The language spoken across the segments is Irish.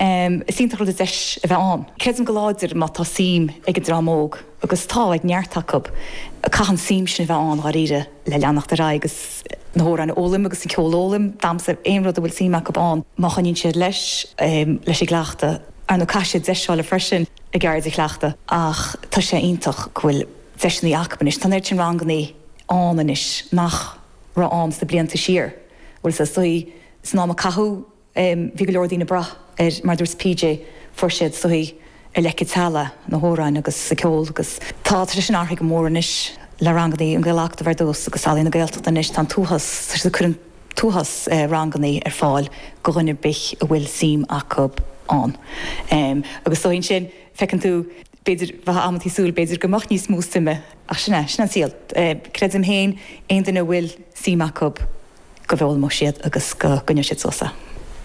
Is iontach rud an deis a bheith ann. Creidim go láidir má tá suim ag an dream óg, agus tá ag neart acu, caithfidh an tsuim sin a bheith ann dháiríre le leanacht ar aghaidh agus na hamhráin a fhoghlaim agus an ceol a fhoghlaim, damhsa, aon rud a bhfuil suim acu ann. Má choinníonn siad leis, leis an gcleachtadh, ar ndóigh caithfidh siad deis a fháil freisin a gceird a chleachtadh ach tá sé iontach go bhfuil deiseanna acu anois. Tá an oiread sin ranganna ann anois, nach raibh ann sna blianta siar, bhfuil a fhios agat, san am a caitheadh. Bhí go leor daoine ag brath ar, mar a dúirt PJ, fuair siad sa tí, ar leic an teallaigh, na hamhráin agus an ceol agus tá, tá sé sin athraithe go mór anois le rangannaí, an Gaelacadamh ar dtús agus Ealaíona Gaeltachta anois, tá an t-uafás, tá siad ag cur an t-uafás rangannaí ar fáil go dhuine ar bith a bhfuil suim acu ann agus is dóigh ansin feiceann tú, b'fhéidir, bheadh amantaí tú ag súil b'fhéidir go mbeadh níos mó suime ach sin é, sin an saol. Creidim féin aon duine a bhfuil suim acu, go bhfoghlaimeoidh siad agus go gcoinneoidh siad suas é.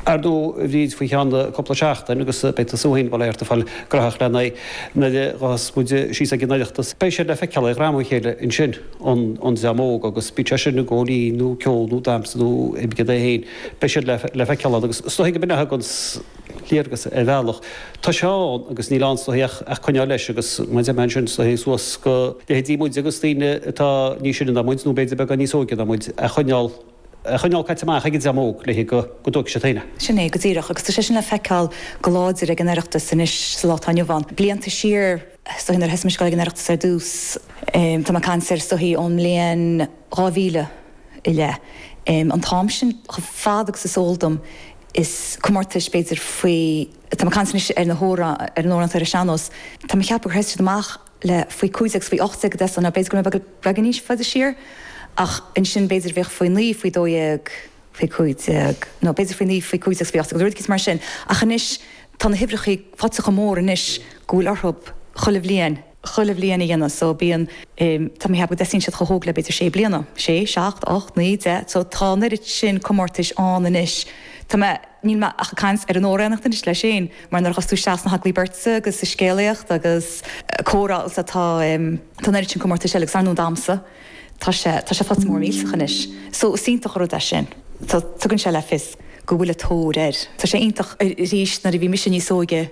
Ar ndóigh, a Bhríd, faoi cheann cúpla seachtain agus beidh tú féin, bail ort, ag fáil gnaitheach lena aghaidh nuair a ghabhfas muid síos ag an Oireachtas. Beidh siad le feiceáil ag gearradh a chéile ansin, an dream óg, agus bíodh sé sin i gcomhrá nó ceol nó damhsa nó oibrigh leat é féin, beidh siad le feiceáil ann agus is dóigh go mbeidh neart againn. léargas ar bhealach. Tá sé ann agus níl ann ach a bheith ag coinneáil leis agus muide, tá a mhéid sin suas go leithéidí muide agus daoine atá níos sine ná muid nó b'fhéidir beagán níos óige ná muid a choinneáil a choinneáil caite amach ag an dream óg le go go dtóigfaidh siad féin a Sin é, go díreach. Agus tá sé sin le feiceáil go láidir ag an Oireachtas anois sa lá atá inniu ann. Blianta siar, so nuair a thosaigh mé ag goil ag an Oireachtas ar dtús, tá mé ag caint ar, abair, ón mbliain 2000 i leith, an t-am sin, chomh fada agus is eol dom, is comórtais b'fhéidir faoi, tá mé ag caint anois ar na hamhráin, ar an amhránaíocht, ar an sean-nós, tá mé ag ceapadh gur thosaigh siad amach le faoi 15 agus faoi 18 is dóigh, nó b'fhéidir go raibh beagán níos faide siar ach ansin b'fhéidir bhíodh faoi 9, faoi 12, faoi 15 nó b'fhéidir faoi 9, faoi 15 agus faoi 18 nó rud eicínt mar sin ach anois tá na huimhreachaí faighte chomh mór anois go bhfuil orthu chuile bhliain. chuile bhliain a dhéanamh. So bíonn eh, tá mé ag ceapadh go dtosaíonn siad chomh hóg le b'fhéidir sé bliana, sé, seacht, ocht, naoi, deich. So tá an oiread sin comórtais ann anois. Tá mé, níl mé ach ag caint ar an amhránaíocht anois léi féin mar nuair a théann tú isteach sna hagallaimh beirte agus sa scéalaíocht agus eh, comhrá agus tá, tá em, tá an oiread sin comórtais eile agus ar ndóigh damhsa, tá sé, tá sé faighte mór millteach anois. So is iontach an rud é sin. Tá, tugann sé le fios go bhfuil an-tóir air. Tá sé iontach aríst nuair a bhí mise níos óige,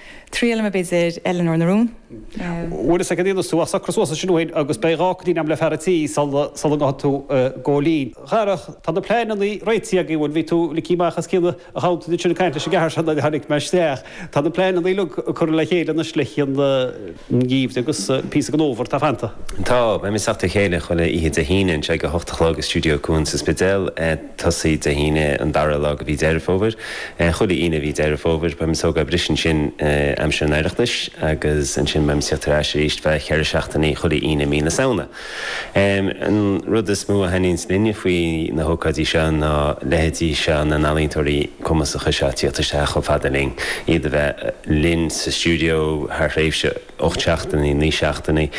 Triailfidh mé b'fhéidir Eileanóir na Rún. Wait a second, an ndéanfaidh tú socrú suas ansin dúinn agus beidh dhá chaoin agam le fear an tí sula ngabhfaidh tú ag gabháil fhoinn. A Dharach, tá na pleanannaí réitithe againn, bhuel, bhí tú ligthe amach os cionn an ghabhainn ansin ag caint leis an gceathar seo nuair a tháinig mé isteach. Tá na pleanannaí uilig curtha le chéile anois le haghaidh an gheimhridh agus píosa den Fhómhar atá fanta. Tá, beimid ag teacht le chéile chuile oíche Dé hAoine anseo ag a hocht a chlog i Studio Cuan sa Spidéal. tosaí Dé hAoine an dara lá de mhí Dheireadh Fómhair. Chuile Aoine i mí Dheireadh Fómhair beidh muid ag tógáil briseadh ansin aimsir an Oireachtais agus ansin beidh muid ag tíocht ar ais arís ar feadh cheithre seachtainí chuile Aoine mí na Samhna. An rud is mó a thaitníonns linne faoi na hócáidí seo ná leithéidí seo na n-ealaíontóirí cumasacha seo ag tíocht isteach chomh fada linn, iad a bheith linn sa stiúideo thar thréimhse. ocht seachtainí, naoi seachtainí,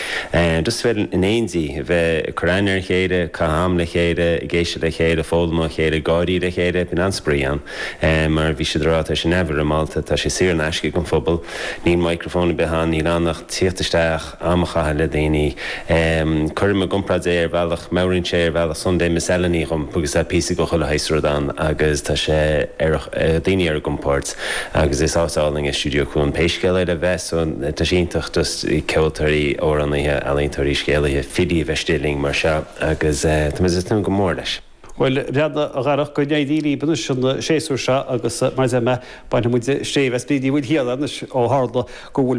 just bheith in éindí, bheith ag cur aithne ar a chéile, ag caitheamh am le chéile, ag éisteacht le chéile, ag foghlaim ó chéile, ag gáirí le chéile, bíonn an-spraoi ann. Mar a bhí sé ag rá, tá sé neamhfhoirmeálta, tá sé saor in aisce ag an phobal, níl microphone ar bith ann, níl ann ach tíocht isteach, am a chaitheamh le daoine. Cuirim i gcomparáid é ar bhealach, meabhraíonn sé ar bhealach Sunday Miscellany dhom agus tá píosa de chuile shaghas rud ann agus tá sé ar, daoine ar a gcompord. Agus is áit álainn é Stiúideo Cuan pé scéal é le bheith so tá sé iontach just ceoltóirí, amhránaithe, ealaíontóirí, scéalaithe, filí a bheith istigh linn mar seo agus tá muid ag tnúth go mór leis. Bhuel, a Bhreandáin, a Dharach, go n-éirí libh anois an séasúr seo agus mar a deir mé, bainfidh muid stéibh as Bríd Ní Mhaoilchiaráin anois ó tharla go bhfuil